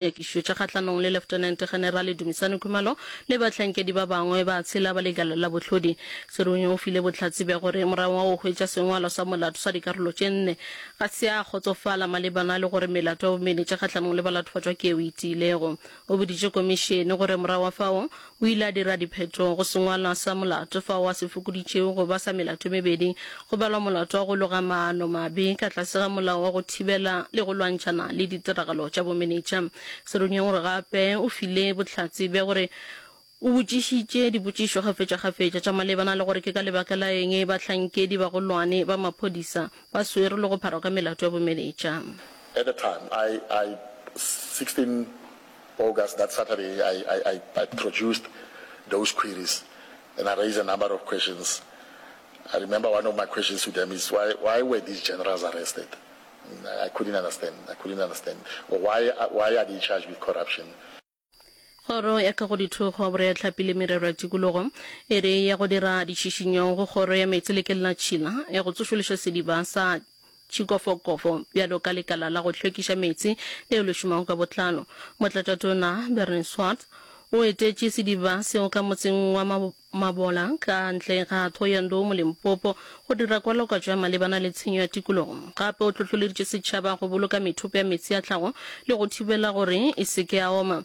Dinyakišo tša kgahlanong le Leftenente Generale Dumisani Khumalo le bahlankedi ba bangwe ba tshela ba Lekala la Bohlodi. Serunya o file bohlatse bja gore morago ga go hwetša sengwalo sa molato sa dikarolo tše nne, ga se a kgotsofala malebana le gore melato ya bomenetša kgahlanong le balatofatšwa ke yeo e tiilego. O boditše Komišene gore morago ga fao, O ile a dira diphetogo go sengwalwa sa molato fao a se fokoditšego go ba sa melato e mebedi, go balwa molato wa go loga maano mabe ka tlase ga Molao wa go Thibela le go Lwantšhana le Ditiragalo tša Bomenetša. Se re nyeng gore gape o file bohlatse bja gore o botšišitše dipotšišo kgafetšakgafetša tša malebana le gore ke ka lebaka la eng bahlankedi bagolwane ba maphodisa ba swerwe le go pharwa ka melato ya bomenetša. At the time, I, I, 16. August, that Saturday, I, I, I, I produced those queries and I raised a number of questions. I remember one of my questions to them is why, why were these generals arrested? I couldn't understand. I couldn't understand. Or why, why are they charged with corruption? Kgoro ya Kagodithogo, Boreatlhapi le Merero ya Tikologo e re ya go dira ditšhišinyo go Kgoro ya Meetse le Kellatšhila ya go tsošološa sediba sa tšhikofokofo bjalo ka lekala la go hlwekiša meetse leo le šomago ka botlalo. Motlatatona Bernie Swartz o etetše sediba seo ka motseng wa Mabola ka ntle ga Thohoyandou mo Limpopo go dira kwalokwatšo ya malebana le tshenyo ya tikologo. Gape o hlohloleditše setšhaba go boloka methopo ya meetse a tlhago le go thibela gore e se ke ya oma.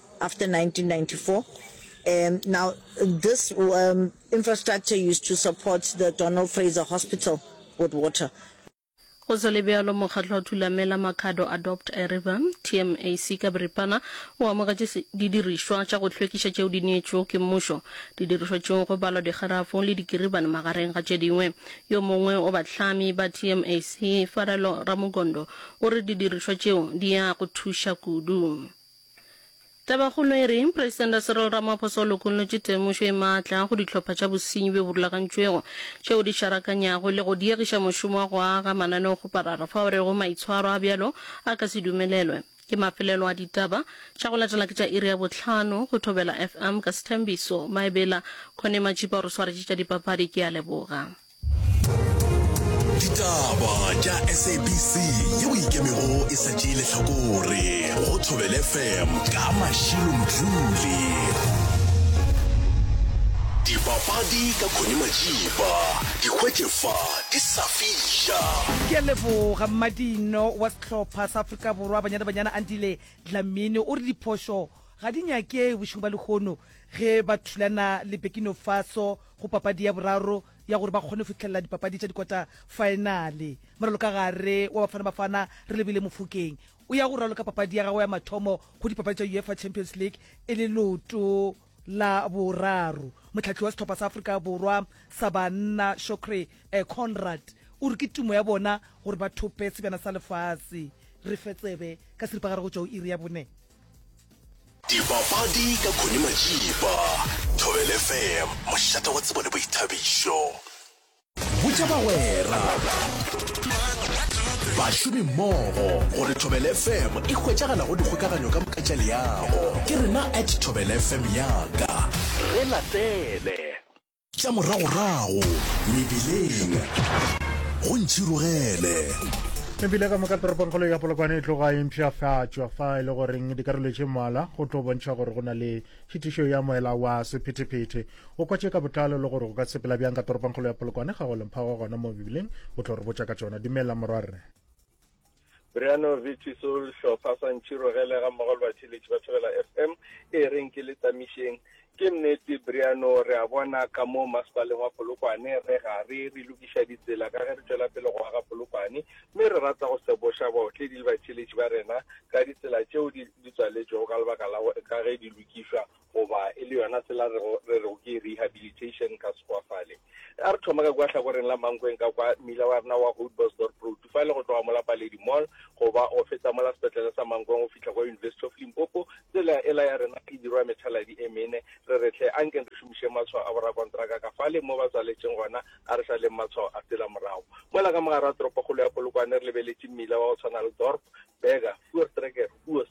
after 1994 um, now this um, infrastructure used to support the Donald Fraser Hospital with water go sa le bjalo mokgatlo wa thulamela makhado adopt a river tmac ka boripana o amogetše didirišwa tša go hlwekiša tšeo di neetšwego ke mmušo didirišwa tšeo go balwa digarafo le dikiribane magareng ga tše dingwe yo mongwe o bahlami ba tmac farelo ramogondo o re didirišwa tšeo di ya go thuša kudu Tabakgolo e re, Presidente Cyril Ramaphosa o lokollotše temošo e maatla go dihlopha tša bosenyi bjo bo rulagantšwego tšeo di šarakanyago le go diegiša mošomo wa go aga mananeokgoparara fao a rego maitshwaro a bjalo a ka se dumelelwe ke mafelelo a ditaba tša go latela ke tša iri ya bohlano go Thobela FM ka Sethembiso Maebela Connie Matšipa o re swaretše tša dipapadi ke a leboga. ditaba tša sabc ye o ikemego e sa tšee lehlakore go thobele fm ka mašilo mdluli dipapadi ka khone majipa dikgwetše fa di sa fiša ke a leboga mmadino wa sehlopha sa afrika borwa banyana banyana andile dlamini o re diphošo ga di nyake bošego ba lehono ge ba thulana le bekino faso go papadi ya boraro ya gore ba kgone fitlhelela dipapadi tša dikota faenale. Moralokagare wa Bafana Bafana Relebile Mofokeng o ya go raloka papadi ya gagwe ya mathomo go dipapadi tša UEFA Champions League e le leoto la boraro. Motlhahli wa sehlopha sa Afrika Borwa sa banna Shocrey eh, Conrad o re ke tumo ya bona gore ba thope sebjana sa lefase. Re fe tsebe ka seripagare go tšwa o iri ya bone. Dipapadi ka Connie Majiba, Thobel FM, mošate wa tsebo le boithabišo. Botša bagwera, bašomimmogo gore Thobel FM e hwetšagala go dikgokaganyo ka moka tša leago. Ke rena at Thobel FM yaka. Re latele! Tša moragorago mebileng go ntšhirogele. Mebile ka moka toropongkgolo ya polokwane e tloga e mpšhafatšwa fa e le goreng dikarolo tše mmalwa go tlo bontšha gore go na le tšhitišo ya moela wa sephetephete o kwatše ka botlalo le gore go ka sepela bjang ka toropongkgolo ya polokwane ga go lemphago gona mo mebileng o tlo re botša ka tšona dumela morwarre Briano Vitiso, Lihlopha sa Ntširogele ga mmogo le batheeletši ba Thobela FM, e reng ke le tsamišeng. Ke nnete Briano, re a bona ka mo Masepaleng wa Polokwane re gare re lokiša ditsela ka ge re tšwela pele go aga Polokwane, mme re rata go seboša baotledi le batheeletši ba rena ka ditsela tšeo di di tswaletšwego ka lebaka la go ka ge di lokišwa goba e le yona sela re go re go ke rehabilitation ka sekwa fale a re thoma ka kwa hlakoreng la mankweng ka kwa mmila wa rena wa Houtbosdorp road fa le go tloga mola paledi mall goba go feta mola sepetlele sa mankweng go fihla kwa university of limpopo tsela e la ya rena e dirwa methaladi e mene re re tle a nkeng re šomiše matshwao a borakontraka ka fale mo ba tswaletšeng gona a re sa leng matshwao a tsela morago mola ka mogare wa toropokgolo ya polokwane re lebeletše mmila wa go tshwana le dorp burger fuertrekker huos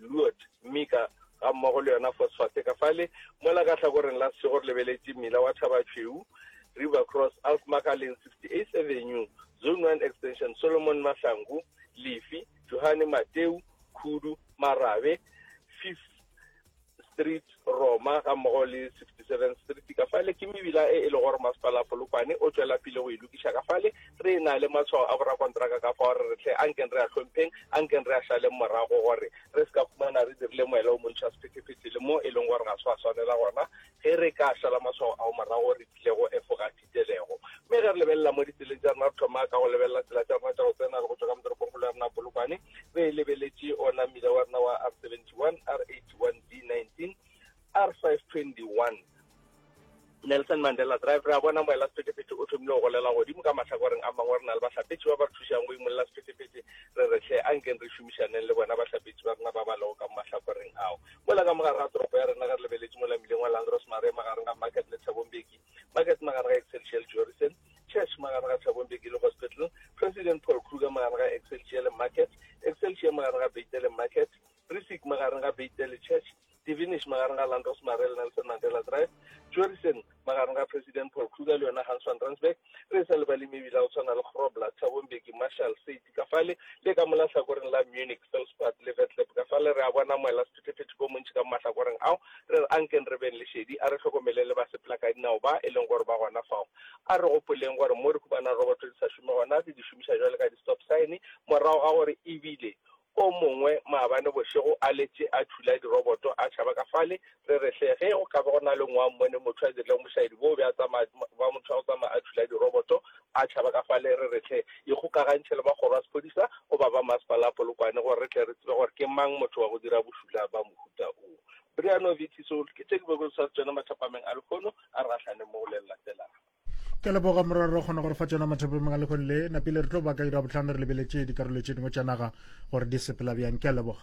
Luot, Mika, ga mmogo le yona Phosphate ka fale mola ka hlakoreng la sešego re lebeletše mmila wa Thabatšhweu, River Cross, Alsmacher Lane, 68th Avenue, Zone One Extension, Solomon Mahlangu, Lifi, Johane Mateu, Khudu, Marabe, Fifth Street, Roma gammogo le 67 Street ka fale ke mebila e e lego gore masepala Polokwane o tšwela pele go e lokiša ka fale re e na le matshwao a borakontraka ka fa gore re hle a nkeng re a hlompheng a nkeng re a šaleng morago gore re se ka fumana re dirile moela o montšha sephetephete le mo e leng gore ga se wa swanela gona ge re ka šala matshwao ao morago re tlile go efoga itelego. Mme ge re lebelela mo ditseleng tša rena, re thoma ka go lebelela tsela tša rena tša go tsena le go tšwa ka motoropongkgolo ya rena Polokwane, re e lebeletše ona mmila wa rena wa R71, R81, D19, R521, Nelson Mandela Drive, re a bona moela sephethephethe o thomile go golela godimo. Ka mahlakoreng a mangwe re na le bahlapetši ba ba re thušang go imolela sephethephethe, re re hle ankeng re šomišaneng le bona bahlapetši ba rena ba ba lego ka mo mahlakoreng ao. Mola ka mogare ga toropo ya rena ge re lebeletše mola mmileng wa Langros Marais magareng ga Market le Thabo Mbeki, Market magare ga Excelsior le Jorrison, Church magare ga Thabo Mbeki le Hospital, President Paul Kruger magare ga Excelsior le Market, Excelsior magare ga Beit le Market, Brisic magareng ga Beit le Church, Divinish magareng ga Land Rosemary le Nelson Mandela Drive, Jorrison magareng ga President Paul Kruger le yona Hans van Rensburg, re sa lebale mebila go tshwana le Grobler, Thabo Mbeki, Marshall, St. ka fale le ka mola hlakoreng la Munich, Felspad le Vetleb ka fale re a bona moela sephethephethe ko montši ka mahlakoreng ao, re re ankeng re beng le šedi, a re hlokomeleng le ba sepelakadinao ba e leng gore ba gona fao. A re gopoleng gore mo re humana roboto di sa šome gona re di šomiša bjale ka di-stop sign morago ga gore e bile o mongwe maabane bošego a letše a thula diroboto a tšhaba ka fale Re re hle ge go ka ba go na le ngwang mone, motho a dirile bošaedi boo, be a tsamaya, ba motho a go tsamaya a thula diroboto, a tšhaba ka fale, re re hle ikgokagantšhe le makgoro a sephodisa goba ba Masepala wa Polokwane gore re tle re tsebe gore ke mang motho wa go dira bošula ba mohuta wo. Brianovich so ke tše ke bego ke tshware tšona mathapameng a lehono a re gahlane mo go le le latelago. Ke a leboga morwa re kgona go re fa tšona mathapameng a lehono le napile re tlo ba ka ira bohlano re lebeletše dikarolo tše dingwe tša naga gore di sepela bjang. Ke a leboga.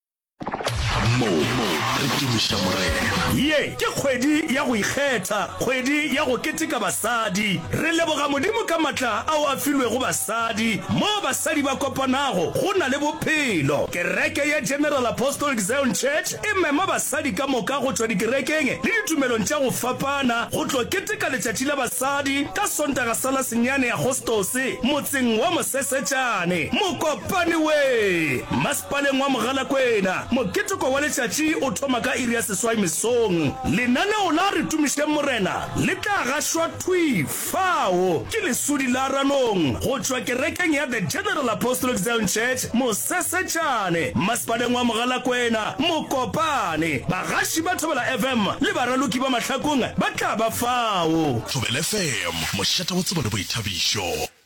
mo re tumiša morena ye ke kgwedi ya go ikgetha kgwedi ya go keteka basadi re leboga modimo ka matla ao a filwego basadi mo basadi ba kopanago go na le bophelo kereke ya general apostolic zion church e mema basadi ka moka go tšwa dikerekeng le ditumelong tša go fapana go tlo keteka letšatši la basadi ka sontaga sa la senyane agostose motseng wa mosesetšane mokopane we Paleng wa Mogalakwena. Moketeko wa letšatši o thoma ka iri ya seswai mesong. Lenaneo la Re Tumišeng Morena le tla gašwa thwi fao ke lesudi la ranong go tšwa kerekeng ya The General Apostolic Zion Church, Mosesetšane, Masepaleng wa Mogalakwena, Mokopane. Bagaši ba Thobela FM le baraloki ba mahlakong ba tla ba fao. Thobela FM, mošate wa tsebo le boithabišo.